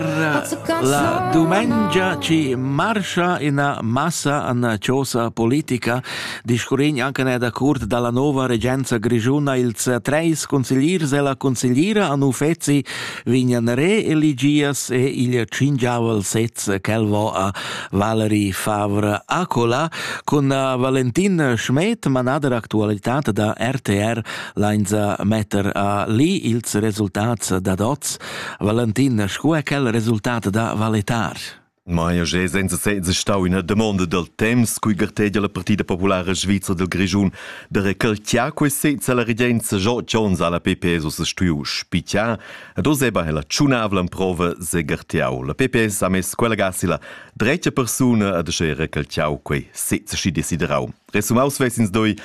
La dumengia ci marscha ina massa an chosa politica, discurrin anche ne da curt dalla nova regenza grigiuna ils treis consigliers e la consigliera an uffezi vignan re eligias e il cingiaval sez quel vo a Valerie Favre Acola con Valentin Schmed, manader actualitat da RTR, leinza metter a li ils resultats dad oz Valentin sco è quel resultat da valitar? Ma ja jé senza senza stau üna damonda dal temps cui gartegia la Partida Populara Svizra del Grischun da recalchiar quei sez alla regenza Joe Jones alla PPS o se stuiu spichar ed oseba è la tschunavla prova se garteau. La PPS ha mess quella gasila drecha persuna ad asce recalchiau quei sez schi desiderau. Resumaus vesins doi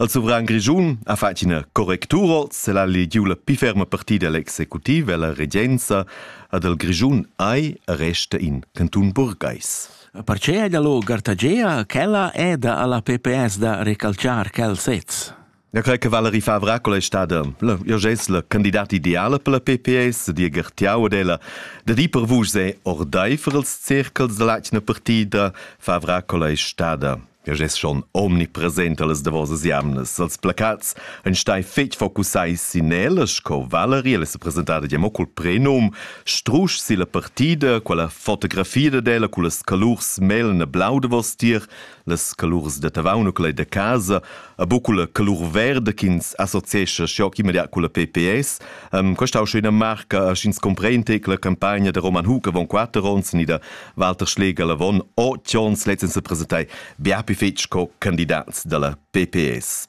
al suvran grischun a fatg ina correctura se la legiu la pi ferma partida l'executiv e la regenza ad el grischun ai resta in canton burgais. Perche è da lo gartagea ch'ella è da alla PPS da recalciar quel sez? Ja cre che Valerie Favra quella è stata io gest la candidata ideale per la PPS, dir Gertiau ed ella da di per vus è ordai für els circels della Latina Partida Favra quella è stata Ja gest schon omnipresent alles davosas jamnas. Als placats ein stai fetg focussai sin ellas, co Valerie, elle s'è presentada ja mo col prenum, strusch si la partida, quella fotografia d'ella, con las calurs melna blau de vos tier, Las calurs da Tavaun u quella da casa, a bu culla calur verda ch'ins associescha schiocc immediat culla PPS. Um, questa è schon una marca, sch'ins comprende che la campagna da Roman Huck avon quatter onns ni da Walter Schläger Lavon o Jones letztens presentai bia più fetg co candidats dalla PPS.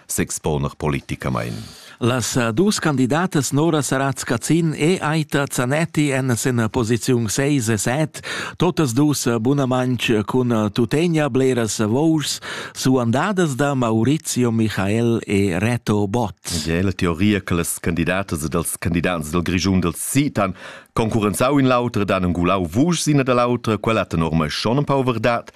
s'exponer politicamain. Las dus candidatas Nora Saratz-Cazin e Aita Zanetti èn sin posiziun seis e set, totas dus bunamain cun tuttegna bleras vouschs suandadas da Maurizio Michael e Reto Bott. È la teoria che las candidatas ed els candidats dal Grischun dals Sitan concurrenzau in l'autra dan engulau vuschs ina da l'autra, quella tenor mai schon un pau verdad.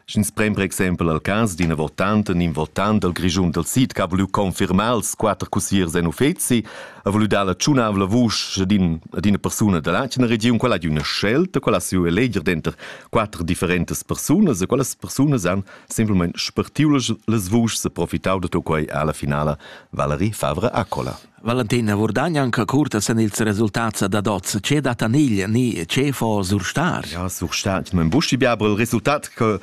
Sch'ins prend per exempel al cas d'ina votanta u in votant dal Grischun dal sid che ha voulu confirmar els quatter cussiers en uffeci, ha voulu dar la tschunavla vusch ad, in, ad ina persuna da l'atgna regiun, quella ha d'una scelta, quella ha siu eleger denter quatter differentas persunas e quellas persunas han semplamain spartiu las, las vuschs e profitau da tut quei alla finala Valerie Favre Accola. Valentin Vurdagn anca curta sen ils resultats dad oz. Ce dat anigl ni ce fo surstar? Ja, surstar. In buschi biabra il resultat che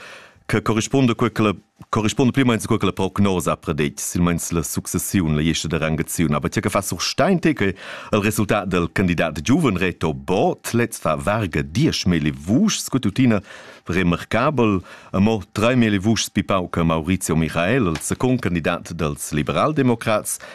che corrisponde quella corrisponde pli meins quella prognosa predit silmeins la successiun la jeste de rangaziun aber tja fa sur steinte che il resultat del candidat giuven reto bot letz fa varga 10.000 vuschs scututina remarcabel a mo 3.000 vuschs pipau che Maurizio Michael il second candidat dels liberaldemocrats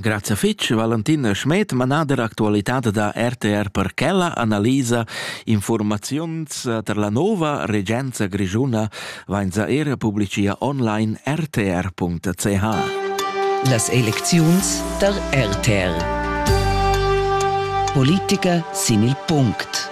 Grazia fitg Valentin Schmed, manader actualitad da RTR per quella analisa informaziuns per la nova regenza grischuna vainza era publicia online rtr.ch. Las elecziuns der RTR. Politica sin il punct.